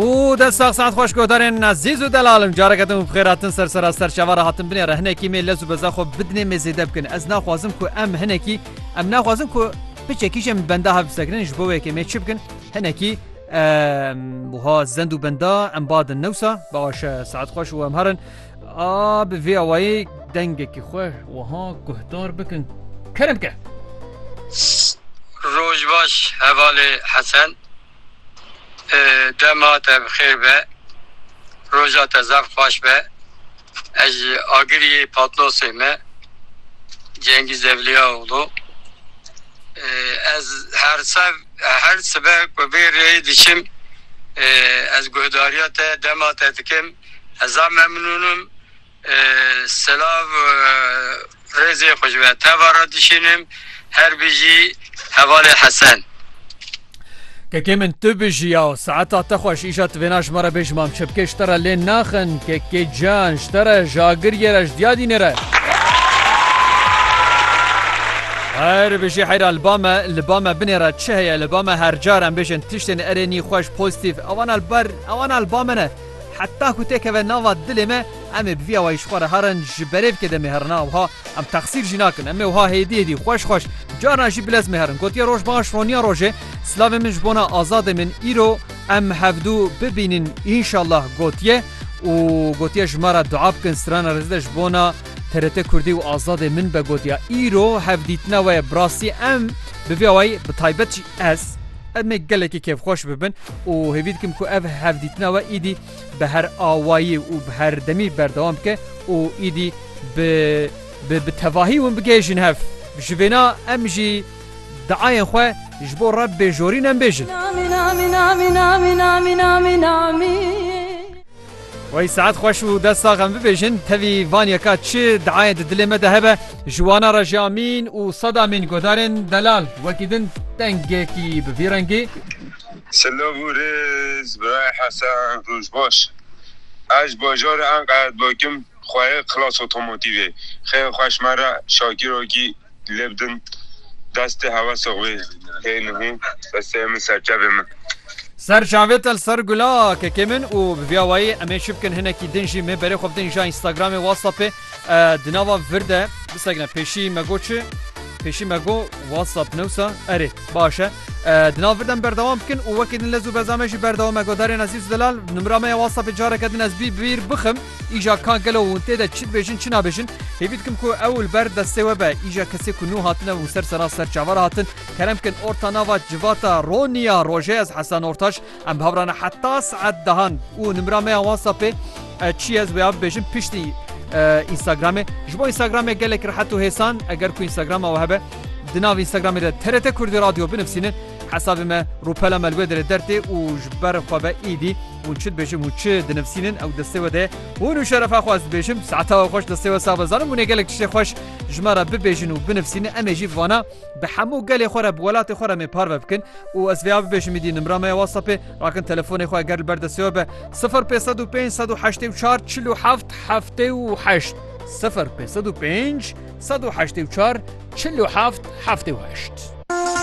û dest sax saet xweş godarên ezîz û delalim careke din xêr hatin ser sera ser çavara hatin binê re hinekî mê lez û beza xwe bidinê mê zêde bikin ez naxwazim ku em hinekî em naxwazim ku piçekî jî em li benda hev bisekinin ji bo wê yekê mê çi bikin hinekî wiha zend û benda em badin newsa baş saet xweş û em herin A bi vê awayî dengekî xwe wiha guhdar bikin, Kerem ke! Roj baş hevalê Hesen. Dema te bi xêr be. Roja te zaf xweş be. Ez ji Agiriyê Patnosê me. Cengîz Evlîyaoglu. Ez her sev her sibe ku vê rêyê diçim ez guhdariya te dema te dikim. Heza memnûnim. Silav rêzê xwe ji we teva re dişînim. Her bijî hevalê Hesen. Kekê min tu bijî ya saeta te xweş îşa tu vêna ji me re bêj mam çi bikê ji te re lê naxin kekê can ji te re ji agiriyê re ji diyadînê re Her bijî heyra li ba me li ba me binê re çi heye li ba me her car em bêjin tiştên erênî xweş pozîtîf ewana li ber ewana li ba me ne Heta ku tê keve nava dilê me, em ê bi vî awayî ji xwe re herin, ji berê bike demê herina wiha, em texsîr jî nakin, em ê wiha hêdî hêdî, xweş xweş, carna jî bilez mê herin. Gotiye roj baş, roniya rojê, silavên min ji bona azadê min îro em hevdu bibînin înşallah gotiye û gotiye ji me re dua bikin strana rezide ji bona TRT Kurdî û azadê min be gotiya îro hevdîtina we ye bi rastî em bi vî awayî bi taybet jî ez Ev ne gelekî kêfxweş bibin û hêvî dikim ku ev hevdîtina we îdî bi her awayî û bi herdemî berdewam bike û îdî bi bi bi tevahî hûn bigihêjin hev. Ji vêna em jî diayên xwe ji bo Rebbê jorîn em bêjin. Wey saet xweş û dest sax em bibêjin. Tevî van yeka çi diayên di dilê me de hebe ji wan a re jî amîn û sed amîn guhdarên delal wekî din dengekî bi vî rengî. Silav û rêz Birayê Hesen, roj baş. Ez ji bajarê Enqerê dikim. Xwe yê Klas Otomotîvê xêr xweş me re şakîrokî lê bidin destê hewesê xwe hê nihû destê min serçavê min. Ser çavê te li ser gula kekê min û bi vîya wayî em ê çi bikin hinekî din jî mê berê xwe bidin îja Instagramê Whatsappê di nava vir de bisegine pêşî me go çi pêşî me go Whatsapp ne wisa erê baş e di nav vir de min berdewam bikin û wekî din lez û beza me jî berdewam e Godarên Ezîz Delal nimra me ya Whatsappê careke din ez bî bîr bixim. Îja ka gelo hûn tê de çi dibêjin çi nabêjin, hêvî dikim ku ew li ber destê we be. Îja kesê ku nû hatine û ser sera ser çavan re hatin, kerem bikin orta nava civata Roniya rojê ez Hesen Ortaç, em bi hev re ne heta saet dehan û nimira me ya WhatsAppê çi ye ez wêya bibêjin piştî Instagramê. Ji bo Instagramê gelek rehet û hêsan eger ku Instagrama we hebe di nav Instagramê de TRT Kurdî Radyo binivîsînin hesabê me rûpela me li wê derê der tê û ji ber xwe ve êdî Hûn çi dibêjin hûn çi dinivsînin ew destê we de hûn û şerefa xwe ez dibêjim saeta we xweş destê we sax be zanim hûnê gelek tiştê xweş ji me re bibêjin û binivsînin emê jî vana bi hemû gelê xwe re bi welatê xwe re mê parve bikin û ez vêya bibêjim îdî nimra me ya whatsappê rakin telefonê xwe eger li ber destê we be 0505 184 47 78 0505 184 47 78